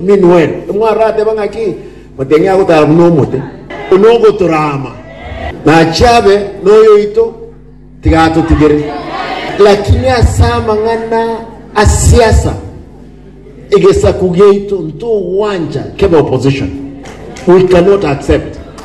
Minwen. Timwarateba ng'aki? Moteng'e agotara buna omote, buna ogotorama. Nachie abe noyoito, tiga atotigere. Lakini ase amang'ana a siasa, egesaku giaito ntogwancha kebe opposition. We cannot accept.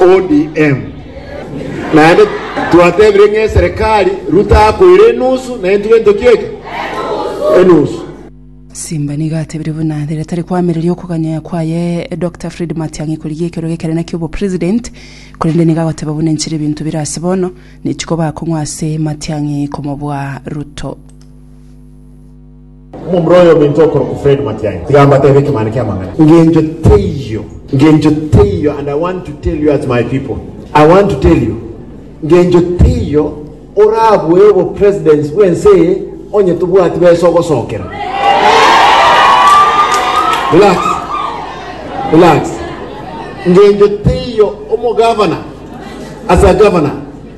ODM. Naende twatebire ng'a eserekari Ruto akoire enusu na intwe ntoki eke? Enusu. Simba nigo atebire buna rere tari koamereria okoganyaya kwaye Dokita Fred Matiang'i korigia ekero gekerene ki'obo president, korende nigo agoteba buna enchera ebinto bire ase bono, ne chikoba akong'u ase Matiang'i komobua Ruto. Omomura oyo ominto okorokwa Fred Matiang'i, tiga mbateebe ekemane ki'amang'ana. Engencho teiyo, engencho teiyo, and I want to tell you as my people, I want to tell you, engencho teiyo orabue obo presidents bw'ense eye onye tobwati besa ogosokera. Relax, relax. Engencho teiyo omo governor, as a governor,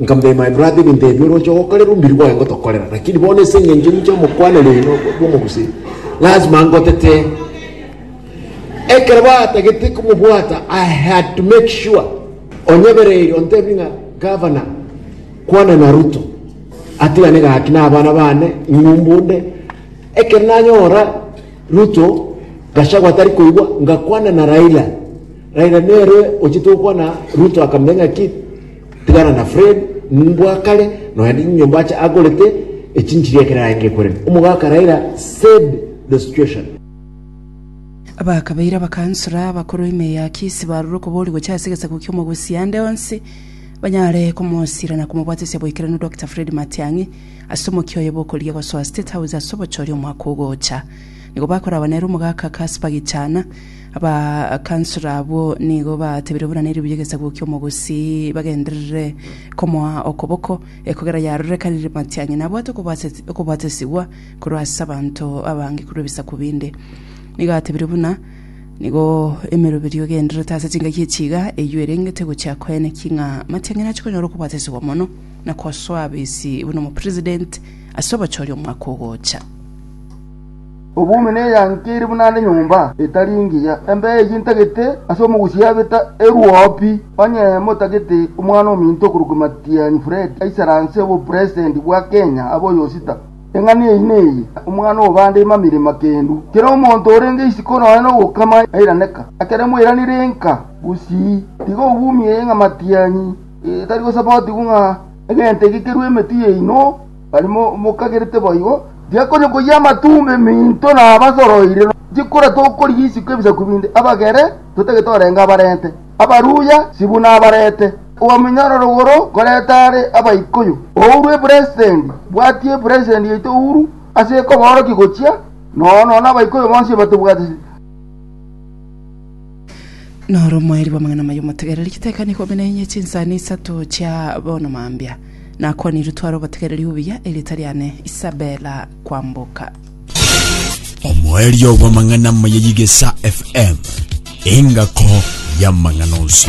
Nkamanya ime, my brother, ebinto ebi oroche gokorerwa omobiri bwaye ngotokorera, lakini bono ase engencho enye chi'omokwana rino bw'omogusii, lazima ngotete. Ekero batagete komobwata, I had to make sure onyebereire ontebi ng'a gavana kwana na Ruto atigane gaki na abana bane ng'umbu onde. Ekero nanyora Ruto Gachagua tari koigwa ngakwana na Raila. Raila nere ochitokwa na Ruto akamenya ng'aki tigana na Fred mbwa kare noende inyomba ache agorete echinchiri ekero arenge korema. Omogaka Raila said the situation. Abakabeire abakansora abakoro ime ya Kisii barure okobori gocha ase egesaku ki'omogusi ande onsi banyare komosira na komobwatesia boikeranu Dokita Fred Matiang'i ase omokia oye bw'okoria gosoa State House ase obochori omwaka ogocha. Nigo bakoraba nere omogaka Casper Gichana Abakansora abwo nigo batebire buna nerio buya egesaku ki'omogusii bagenderere komoa okoboko, ekogera yarorekanire matianyi nabwate okobwate- okobwatesigwa korwa ase abanto abange korwa ebisaku binde. Nigo atebire buna nigo emeroberio egendererete ase chingaki echi iga, eyio erengete gochia koeneki ng'a matianyi nachie konyora okobwatesigwa mono na kosoa abisi buna omopresident ase obochori omwaka ogocha. Obobe neyanke ere buna ande nyomba etari engiya. Embe eyio intagete ase omogusii abeta eruopi. Onye motagete omwana ominto okorokwa Matiang'i Fred aisare anse obopresitendi bwa Kenya abe oyosita, eng'ana eyio neye, Omwana obande imamire makendu. Kera omonto orenge isiko nonya nogokama nairaneka. Ekero moiranire enka gusii, tiga obumie ng'a Matiang'i etari gosapotigwa ng'a egento ege kerue emetwe yaino. Baria mokagerete boigo, ndiakonyokoyia amatumbo eminto nabasoroire, tikora tokorigia isiko ebisaku binde, abagere totagete orenge abarente, abaruya sibuna abarete, obaminyoora rogoro koreta are Abaikuyu. Ouru epresendi, bwatia epresendi yaito ouru ase ekoboorokia gochia, nono nono Abaikuyu bonsi batobwatisi. Noro omoerio bw'amang'ana amaya omotegereri chitekano ikomi na inye chinsani isato chia bono mambia. Nakwanirwe tware obotegereri obuya, erieta riane Isabella Kwamboka. Omoerio bw'amang'ana amaya y'Igesa FM, engako y'amang'ana onsi.